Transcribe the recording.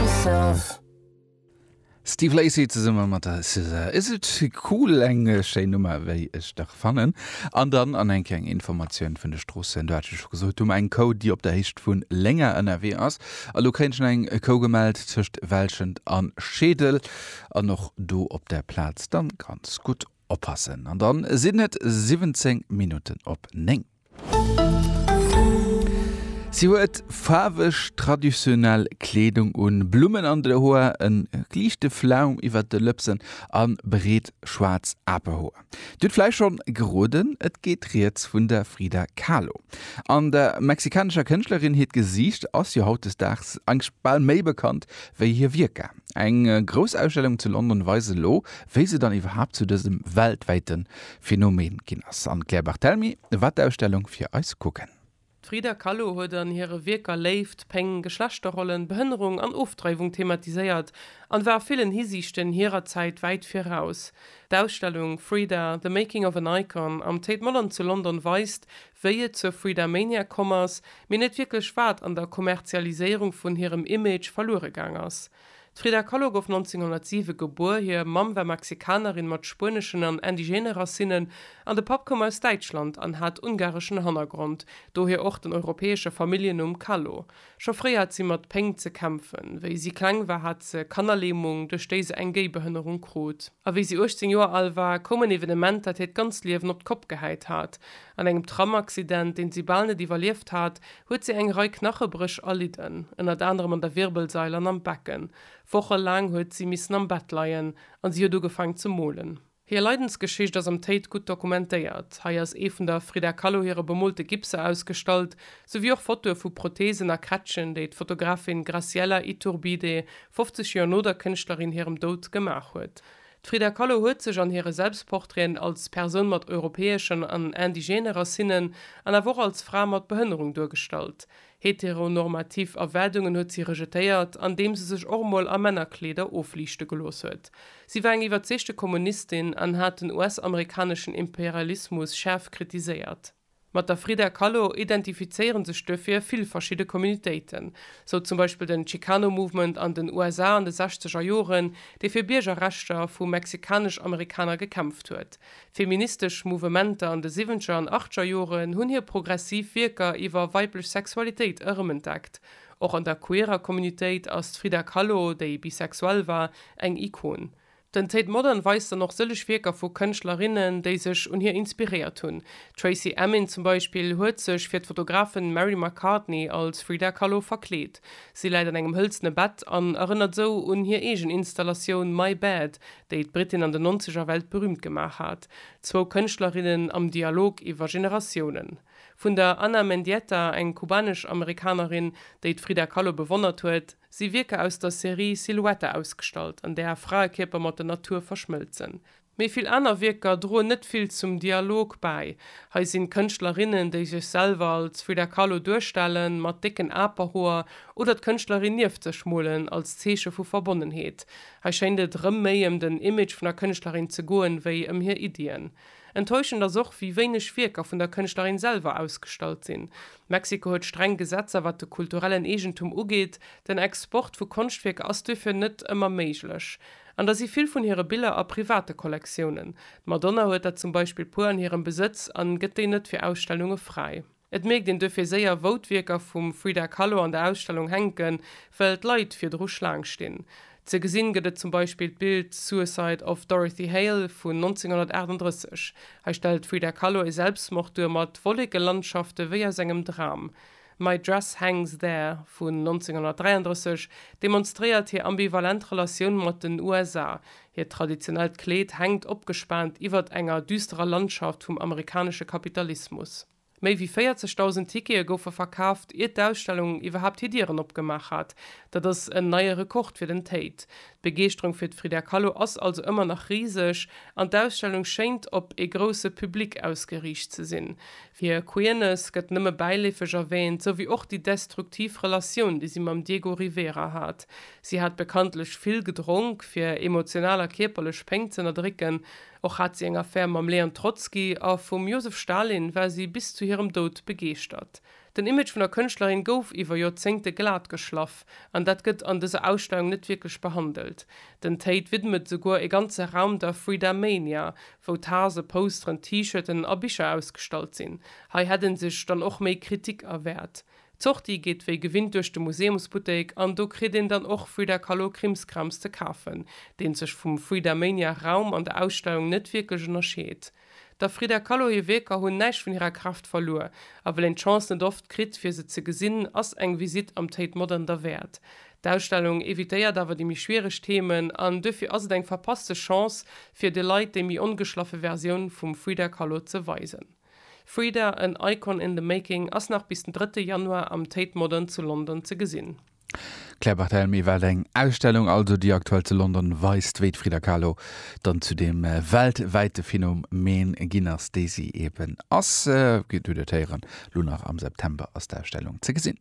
myself. Steve Lacy zesumme mat der SZA, Is it cool? Eng schéin Nummer, wéi ech dach fannen. An dann an eng kleng Informatioun vun de Stroossen. Do hat ech jo scho gesot, do eng Kou, déi op der Héicht vu Lénger ënnerwee ass. A lo kréien ech nach eng Kou gemellt tëscht Welschent an Scheedel an och do op der Plaz. Dann ganz gutt oppassen. An dann sinn et 17 Minutten op 9. Si huet faarweg traditionell Kleedung un, Blummen an de Hoer, e liichte Flaum iwwert de Lëpsen a breet schwaarz Apehoer. Dir hutt vläicht schonn geroden, et geet rieds vun der Frida Kahlo. An der mexikanescher Kënschtlerin hiert Gesiicht ass jo hautdesdaags eigentlech bal méi bekannt wéi hir Wierker. Eng grouss Ausstellung zu London weist elo, wéi se dann iwwerhaapt zu dësem weltwäite Phänomen ginn ass. An d'Claire Barthelmy war d'Ausstellung fir eis kucken. D'Frida Kahlo huet an hire Wierker Léift, Péng, Geschlechterrollen, Behënnerung an Ofdreiwung thematiséiert an war a villen Hisiichten hirer Zäit wäit viraus. D'Ausstellung Frida, The Making of an Icon am Tate Modern zu London weist, wéi et zur Freedamania komm ass, mee net wierklech wat an der Kommerzialiséierung vun hirem Image verluere gaang ass. D'Frida Kahlo gouf 1907 gebuer. Hir Mamm war Mexikanerin mat spueneschen an indigene Racinnen an de Papp koum aus Däitschland an hat ungareschen Hannergrond, dohier och den europäesche Familljennumm Kahlo. Scho fréi hat si mat Péng ze kämpfen. Wéi si kleng war, hat se Kannerlähmung, duerch déi se eng Géibehënnerung krut. A wéi si 18 Joer al war, koum en Evenement, dat hiert ganzt Liewen op d'Kopp gehäit hat. An engem Tram-Accident, deen si bal net iwwerlieft hat, huet si eng Rei Knachebréch erlidden, ënnert anerem an der Wirbelsail an am Becken. Woche laang huet si missen am Bett leien an si huet ugefaang ze molen. Hir Leidensgeschicht ass am Tate gutt dokumentéiert. Hei ass ee vun der Frida Kahlo hire bemolte Gipser ausgestallt, souwéi och Fotoe vu Protheesen a Quetschen, déi d'Fotografin Graciela Iturbide 50 Joer no der Kënschtlerin hirem Doud gemaach huet. D'Frida Kahlo huet sech an hire Selbstportraiten als Persoun mat europäeschen an indigene Racinnen an awer och als Fra mat Behënnerung duergestallt. Heteronormativ Erwaardungen huet si rejetéiert, andeem se sech och emol a Männerkleeder ofliichte gelooss huet. Si war eng iwwerzeegte Kommunistin an hat den US-amerikaneschen Imperialismus schaarf kritiséiert. Mat der Frida Kahlo identifizéiere sech duerfir vill verschidde Communitéiten, sou zum Beispill den Chicano Movement an den USA an de sechzeger Joren, dee fir Biergerrechter vu mexikanesch-Amerikaner gekämpft huet. Feministesch Mouvementer an de siwwenzeger an achtzeger Joren hunn hir progressiv Wierker iwwer weiblech Sexualitéit erëmentdeckt. Och an der queerer Communitéit ass d'Frida Kahlo, déi bisexuell war, eng Ikon. Den Tate Modern weist dann och sëllech Wierker vu Kënschtlerinnen, déi sech un hir inspiréiert hunn. D'Tracey Emin zum Beispill huet sech fir d'Fotografin Mary McCartney als Frida Kahlo verkleet. Si läit an engem hëlzene Bett an erënnert sou un hir eegen Installatioun My Bed, déi d'Britin an den Nonzeger weltberüümt gemaach hat. Zwou Kënschtlerinnen am Dialog iwwer Generatiounen. Vun der Ana Mendieta, eng kubanesch-Amerikanerin, déi d'Frida Kahlo bewonnert huet, si Wierker aus der Serie Silhouette ausgestallt, an där Fraekierper mat der Natur verschmëlzen. Méi vill aner Wierker droen net vill zum Dialog bäi. Hei sinn d'Kënschtlerinnen, déi sech selwer als Frida Kahlo duerstellen, mat décken Aperhoer, oder d'Kënschtlerin nieft sech molen, als Zeeche vu Verbonnenheet. Hei schéint et erëm méi ëm den Image vun der Kënschtlerin ze goen, wéi ëm hir Iddien. Enttäuschend ass och, wéi wéineg Wierker vun der Kënschtlerin selwer ausgestallt sinn. Mexiko huet streng Gesetzer wat de kulturellen Eegentum ugeet. Den Export vu Konschtwierker ass duerfir net ëmmer méiglech. An da si vill vun hire Biller a private Kollektiounen. D'Madonna huet der zum Beispill puer an hirem Besëtz an gëtt déi net fir Ausstellunge fräi. Et mierkt een duerfir séier wou d'Wierker vum Frida Kahlo an der Ausstellung hänken, well d'Leit virdru Schlaang stinn. Ze gesinn gëtt et zum Beispill d'Bild Suicide of Dorothy Hale vun 1938. Hei stellt d'Frida Kahlo e Selbstmord duer mat Wollekelandschafte wéi aus engem Dram. My Dress Hangs There vun 1933 demonstréiert hir ambivalent Relatioun mat den USA, hiert traditionellt Kleed hänkt opgespaant iwwert enger düsterer Landschaft vum amerikanesche Kapitalismus. Méi wéi 40.000 Tickete goufe verkaaft, ier d'Ausstellung iwwerhaapt hir Dieren opgemaach hat. Dat ass en neie Rekord fir den Tate. D'Begeeschterung fir d'Frida Kahlo ass also ëmmer nach riseg an d'Ausstellung schéint op ee grousse Public ausgeriicht ze sinn. Hir Queerness gëtt nëmme bäileefeg erwäänt, sou wéi och déi destruktiv Relatioun, déi si mam Diego Rivera hat. Si hat bekanntlech vill gedronk, fir emotional a kierperlech Péng z'ënnerdrécken. Och hat si eng Affär mam Leon Trotzki a vum Josef Stalin war si bis zu hirem Doud begeeschtert. Den Image vun der Kënschtlerin gouf iwwer Joerzéngte glat geschlaff an dat gëtt an dëser Ausstellung net wierklech behandelt. Den Tate widmet souguer e ganze Raum der Freedomania, wou Tase, Posteren, T-Shirten a Bicher ausgestallt sinn. Hei hätt en sech dann och méi Kritik erwäert. D'Sortie geet wéi gewinnt duerch de Museumsbuttek an do kritt een dann och Frida Kahlo Krimskrams ze kafen, deen sech vum Fridamania Raum an der Ausstellung net wierklech ënnerscheet. Der Frida Kahlo hir Wierker hunn näischt vun hirer Kraaft verluer, a well een d'Chance net oft kritt fir se ze gesinn, ass eng Visitt am Tate Modern derwäert. D'Ausstellung evitéiert awer déi méi schwiereg Themen an duerfir ass et eng verpasste Chance fir de Leit déi méi ongeschlaffe Versioun vum Frida Kahlo ze weisen. Frida, en Icon in the making ass nach bis den drëtte Januar am Tate Modern zu London ze gesinn. Claire Barthelemy, Wat eng Ausstellung also, déi aktuell zu London weist, wéi d'Frida Kahlo dann zu deem weltwäite Phänomen ginn ass, dee si eben ass. Dir hutt et héieren, elo nach am September ass d'Ausstellung ze gesinn.